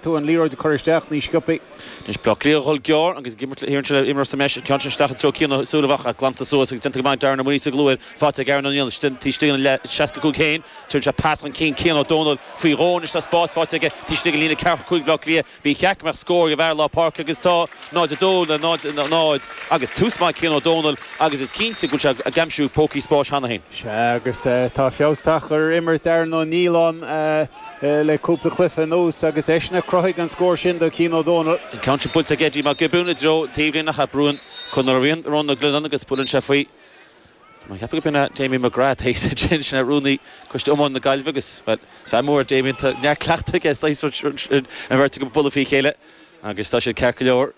tú an liathróid a chur isteach níos sciopaí. Anois Bleá Cliath a dhul gearr agus ag imirt le hÉireann seo imreoir sa mbreis an ceann sin isteach i dtreo Cian Ó Súilleabháin glanta suas agus déanta go maith Darren Ó Muirgheasa go luath faighte ag Aaron Ó Nialláin taobh istigh dá líne 65 féin tugann sé pas chun cinn Cian Ó Dónaill faoi dhó anois tá spás faighte aige taobh istigh de líne 45 Bhleá Cliath ba cheart go mbeadh scór ag an bhfear lár páirce agus tá 0-2 le 0-0 agus tús maith ag Cian Ó Dónaill agus is cinnte go bhfuil sé ag aimsiú pócaí spáis cheana féin. Sea agus tá feabhas tagtha ar imirt Aaron Ó Nialláin. le cúpla cluiche anuas agus eisean a chruthaigh an scór sin do Chian Ó Dónaill. An ceann sin buailte ag Eddie Mac Giobúin i dtreo taobhlíne Theach Rúain. Conal Ó Riain, Rónán Mag Leannáin agus buaileann sé faoi. Tá mé ag ceapadh gurb in é Damien McGrath a thit ansin. Sin é rúnaí coiste iomána na Gaillimhe agus, bhuel, is fear mór é Damien. Tá neart cleachtaidh aige, saghas rud sin, an bheirt acu ag bualadh faoi chéile agus tá siad ceart go leor.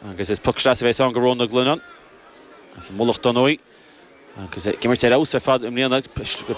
Agus is poc sleasa a bheas ann do Rónán Mag Leannáin as an Mullach dar ndóigh. Agus é ag imirt ar fheabhas ar fad i mbliana,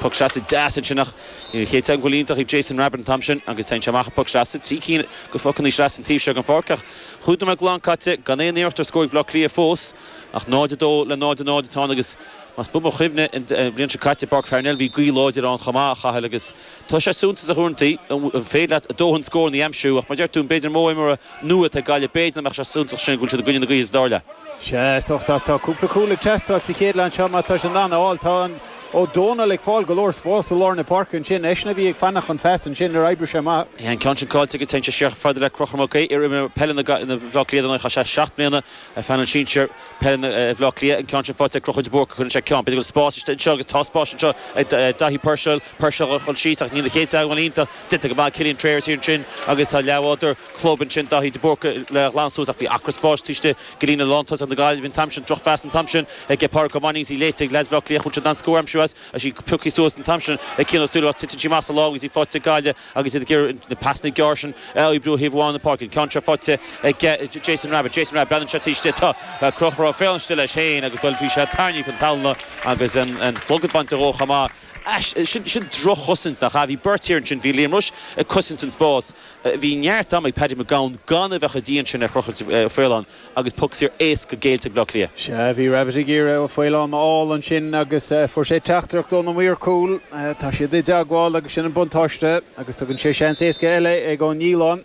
poc sleasa deas ansin ach ní raibh an chéad teagmháil iontach ag Jason Rabbitte an t-am sin agus téann sé amach an poc sleasa, trí cinn de phocannaí sleasa an taobh seo den pháirc ach cheithre nóiméad glan caite, gan aon iarracht ar scór ag Bleá Cliath fós ach 0-2 le 0-0 atá ann agus más buan mo chuimhne an bhliain seo caite i bPáirc Pharnell bhí gaoth láidir ann chomh maith a Chathail agus Tá sé suntasach ó thaobh de an féidir leat do dhóthain scóranna a aimsiú? Ach mar a deir tú, b'fhéidir mó imreoirí nua atá ag Gaillimh, b'fhéidir nach mbeadh sé chomh suntasach sin go bhfuil siad i gcoinne na gaoithe is dar leat. Sea, is dócha ach tá cúpla cúl ag teastáil sa chéad leath seo mar tá sé nach eol. Tá Ó Dónaill ag fáil go leor spás i lár na páirce ansin. Eisean a bhí ag fanacht chun feasa ansin nuair a oibrigh sé amach. Bhí an ceann sin caillte aige, téann sé siar chomh fada le Conchúr Mac Aodha, iar-imreoir peile na na Bhleá Cliath dar ndóigh. Chaith sé seacht mbliana ar phainéal sinsir peile Bhleá Cliath. An ceann sin faighte ag Conchúr de Búrca, cuireann sé ceann. B'fhéidir go bhfuil spás istigh anseo agus tá spás anseo ag Daithí Puirséal. Puirséal a dhul síos ach níl a chéad teagmháil iontach déanta go maith. Cillian Trayers siar ansin agus tá a leathbhádóir club ansin, Dáithí de Búrca, le a ghlanadh suas ach bhí acra spáis taobh istigh de líne lántosach na Gaillimhe an t-am sin. Drochphas an t-am sin ag Pádraig Ó Mainnín agus í léite ag leads Bhleá Cliath. An bhfuil siad in ann scór a aimsiú as agus í pioctha suas an t-am sin ag Cian Ó Súilleabháin. Titeann sí amach as a lámh agus í faighte ag Gaillimh agus iad ag iarraidh na pasanna gearra sin a oibriú ó thaobh amháin na páirce. An ceann seo faighte ag Jason Rabbitte. Jason Rabbitte, breathnaíonn sé taobh istigh. Tá Conchúr Ó Faoláin istigh leis féin agus go bhfuil sé tarraingthe chun talún agus an clogad bainte dhó chomh maith. Sin droch-chosaint, nach ea? Bhí beirt fhear ansin, bhí Liam Rushe ag cosaint an spáis, bhí neart ama ag Paddy Mac Gabhann gan a bheith chomh dian sin ar Chonchúr Ó Faoláin agus poc saor éasca géillte ag Bleá Cliath. Sea, bhí Rabbitte ag iarraidh Ó Faoláin a fháil ansin agus fuair sé teachtaireacht óna mhaor cúil. Tá siad i dteagmháil agus sin an buntáiste agus tugann sé seans éasca eile ag Ó Nialláin.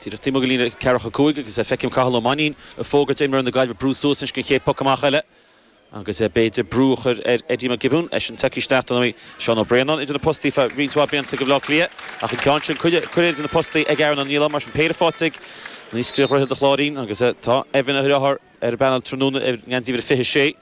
Díreach taobh amuigh den líne ceathracha cúig agus feicim Cathal Ó Mainnín ag fógairt ar imreoirí na Gaillimhe brú suas anois don chéad poc amach eile. Agus b'fhéidir brú a chur ar Eddie McGibbon, eisean tagtha isteach do Seán Ó Braonáin idir na postaí feadh roinnt mhaith blianta do Bhleá Cliath. Ach an ceann sin curtha idir na postaí ag Aaron Ó Nialláin. Mar sin péire faighte aige anois fear Dhroichead an Chláirín. Agus tá Evan a dheartháir ar an bpainéal tráthnóna i ngeansaí uimhir a fiche sé.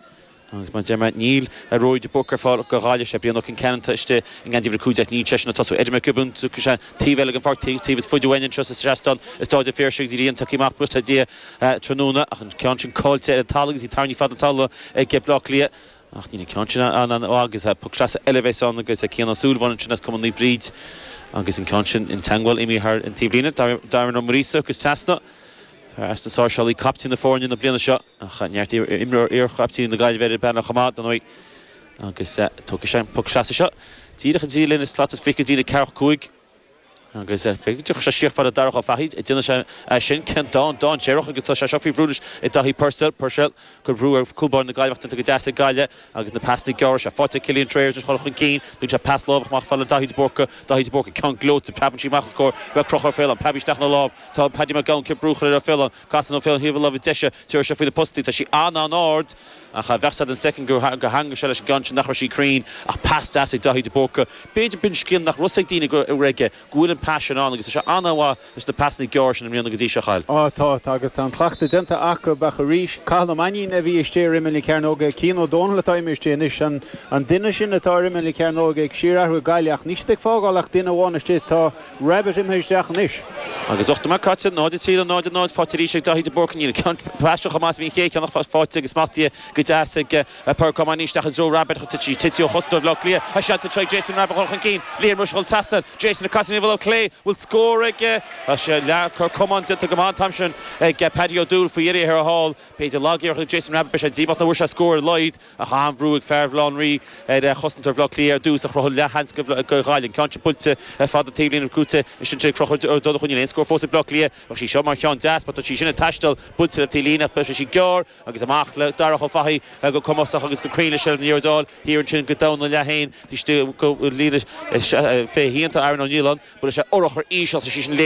Agus mar a deir mé níl Ruairí de Búrca ar fáil do Ghaillimh. Sé Brian Ó Concheanainn atá istigh i ngeansaí uimhir a cúig déag. Níl eisean ag tosú. Eddie McGibbon, tiocfaidh sé taobh eile den pháirc, taobh is faide uainn anseo sa seastán is dá fhear sin go dtí an tagtha amach buíochas le Dia. tráthnóna ach an ceann sin caillte ar an talamh agus bhí tairní fada an tsamhla aige Bleá Cliath ach níl an ceann sin ann ó agus poc sleasa eile a bheas ann agus Cian Ó Súilleabháin ansin as Cumann Naomh Bríd agus an ceann sin an teagmháil imithe thar an taobhlíne Darren Ó Muiríosa ag dul trasna fear as na Sáirséalaigh caiptín na foirne na bliana seo ach neart imreoir iarchaiptíní na Gaillimhe ar an bpainéal chomh maith dar ndóigh agus tógfaidh sé an poc sleasa seo díreach idir an líne slat is fiche is an líne ceathracha cúig Agus tiocfaidh sé síos fhad le Darach Ó Fathaigh ag déanamh sé sin. Ceann dána dainséarach agus tá sé seo faoi bhrú anois ag Daithí Purcell, Puirséal, ag cur brú ar chúl báire na Gaillimhe ach déanta go deas ag Gaillimh agus na pasanna gearra seo. Faighte ag Cillian Trayers leis chur chun cinn. Tugann sé pas láimhe amach fhad le Daithí de Búrca. Daithí de Búrca ceann gleoite. Preabann sí amach os comhair Conchúr Ó Faoláin. Preab isteach ina lámh. Tá Paddy Mac Gabhann ag iarraidh brú a chur ar Ó Faoláin. Casann Ó Faoláin ar thaobh na láimhe deise. Tabharfaidh sé faoi na postaí. Tá sí an-an-ard. Ach bheadh a fhios agat an second gur theagmhaigh sé leis an gceann sin nach raibh sí cruinn ach pas deas ag Daithí de Búrca. B'fhéidir b'in scil nach raibh a fhios ag daoine go raibh aige, go bhfuil an pas sin ann agus tá sé an-mhaith leis na pasanna gearra sin i mbliana go dtí seo, a Chathail. Á, tá, tá agus tá an cleachtadh déanta acu. Ach arís, Cathal Ó Mainnín a bhí istigh ar imeall na cearnóige, Cian Ó Dónaill atá imithe istigh anois, an an duine sin atá ar imeall na cearnóige ag síorathrú ag Gaillimh ach níl siad ag fágáil ach duine amháin istigh, tá, Rabbitte imithe isteach anois. Agus ocht nóiméad caite, 0 3 le 0 0, faighte arís ag Dáithí de Búrca. Níl an ceann paiste chomh maith is a bhí an chéad cheann ach faighte agus smachtaithe go deas ag Pádraic Ó Mainnín isteach i dtreo Rabbitte ach tá tite ó chosantóir Bhleá Cliath a sheilbh tar tríd Jason Rabbitte ag dul chun cinn. Liam Rushe chun trasna air. Jason ag casadh ar thaobh na láimhe clé. Bhfuil scór aige? Tá sé leath cor camáin déanta go maith an t-am sin ag Paddy Ó Dúill faoi iarraidh a hair a fháil. B'fhéidir lagiarracht ag Jason Rabbitte beidh sé díomách nach bhfuair sé scór ar a laghad. Ach an-bhrú ag fear Bhaile Átha an Rí ar chosantóir Bhleá Cliath ar dtús a chruthaigh an leathsheans do Ghaillimh. An ceann sin buailte fad an taobhlíne agus brúite ansin tríd Conchúr ag dul chun cinn. Níl aon scór fós ag Bleá Cliath. Bheadh sí seo mar cheann deas mar tá sí sin ag taisteal buailte le taobhlíne ach beidh sí gearr agus amach le Darach Ó Fathaigh go cumasach agus go cruinn leis an liathróid a fháil thiar ansin go domhain ina leath féin. Taobh istigh dá líne fiche ina theannta Aaron Ó Nialláin. Buailfidh sé urchar íseal. Tá sí sin